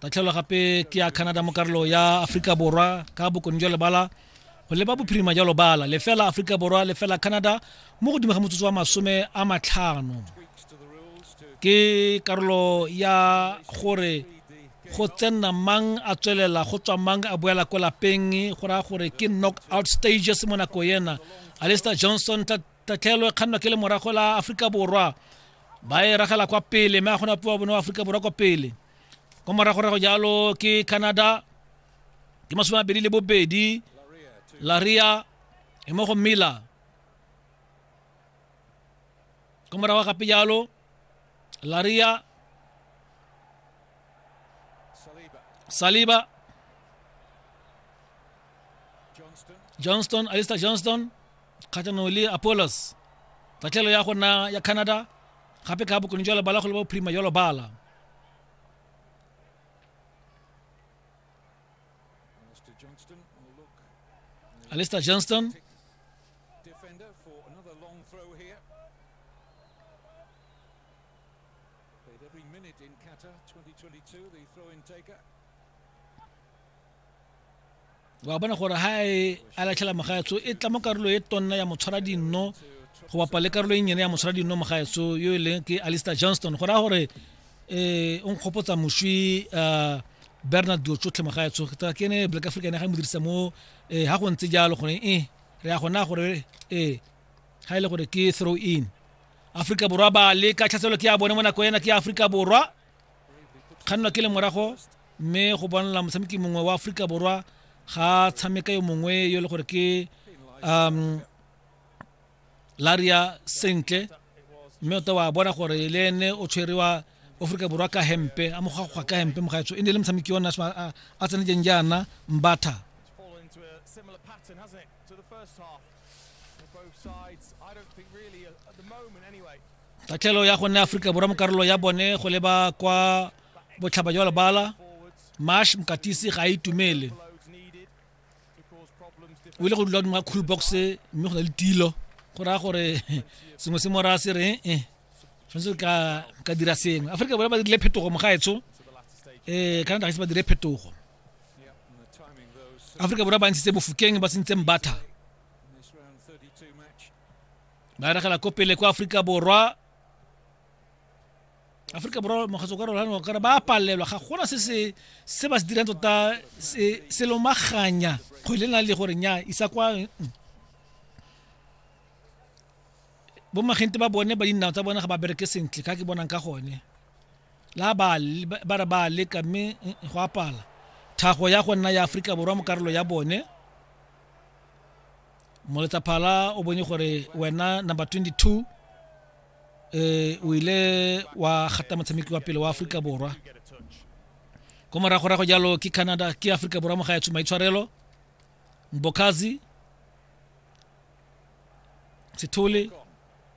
tatlhelo gape ke ya canada mo karolo ya aforika borwa ka bokone jwa lebala go leba bophirima jwa lobala lefela aforika borwa lefela canada mo godimo ga motsotso wa masome a matlhano ke karolo ya gore go tsenna mang a tswelela go tswa mang a boela ko lapeng go raya gore ke knock out stages mo nako ena alister johnson tatlhelo e kgannwa ke le morago la aforika borwa ba e ragela kwa pele mme a kgona puwa bone wa aforika borwa kwa pele kwa moragorago jalo ke canada ke masome abedi le bobedi laria e mo go miller kwa morago gape jalo laria saliba johnston alistair johnston kgatlhanong le apolos tatlhelo ya go nna ya canada gape ka bokone jwa lebala go le bophirima jwa lobala alistair johnston wa bona gore ha e a latlhela mogaetso e tla mo karolo e tonna ya motshwara dinno go bapa le karolo e nnyene ya motshwara dinno mogaetso yo e leng ke alistair johnston go raya gore um o nkgopotsa moswi um bernard dilo tsotlhe mogaetso ke ene black african ya ga mo dirisa mo um ga go ntse jalo gone e re ya gona gore ee ga e le gore ke throw in aforika borwa ba le ka tlhaselo ke ya bone mo nako ena ke ya aforika borwa kgannwa ke le morago mme go bonala motshameki mongwe wa aforika borwa ga tshameka yo mongwe yo e le gore ke um laria sentle mme o ta wa bona gore le ene o tshwerewa aforika borwa ka hempe a mogagwa ka hempe mogaetso e ne e le motshameki ona a tsenetseng jaana mbatha tatlhelo ya go nne aforika borwa mo karolo ya bone go leba kwa botlhaba jwa lebala mash mokatisi ga a itumele o ile go dula dingwa cool box mme go na le tilo go raya gore sengwe se mora se reng e eh, tshwanetse ka ka dira sengwe aforika borwa ba dirile phetogo mogaetsho um eh, canada ga ise ba dire phetogo aforika borwa ba ntshitse bofokeng ba sentse mbatha ba eregela ko pele kwa aforika borwa aforika borwa mokgatso ka rolano kare ba palelwa ga gona se se se ba se dirang tota se se lomaganya kgwele na le gore nya isa kwa mm. bo magente ba bone ba dinao tsa bone ga ba bereke sentle ka ke bonang ka gone la ba le- ba ba re ba leka mme mm, go apala thago ya go nna ya aforika borwa mo karolo ya bone moletsa phala o bone gore wena number 22 eh o ile wa gata motshameki wa pele wa Afrika Borwa ko morago rago jalo ke Canada ke Afrika Borwa mo ga ya tshuma itshwarelo Mbokazi Sithole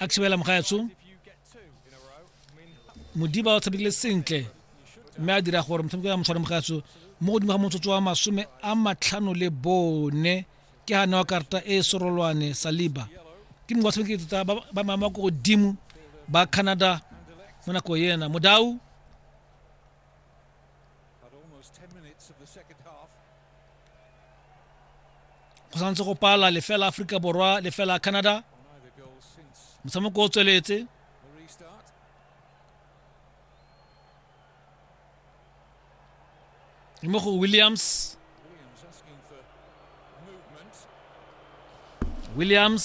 a thibela mogaetsho modiba o tshamekile sentle mme a dira gore motshameko ya motshware mogaetsho mo godimo ga motsotso wa masome a matlhano le bone ke ga newa karata e sorolwane saliba ke mongwe wa tshamekile tota ba mama ko godimo ba canada mo nako ena modau go santse go pala lefela aforika borwa lefela canada motshameko o tsweletse mo go williams williams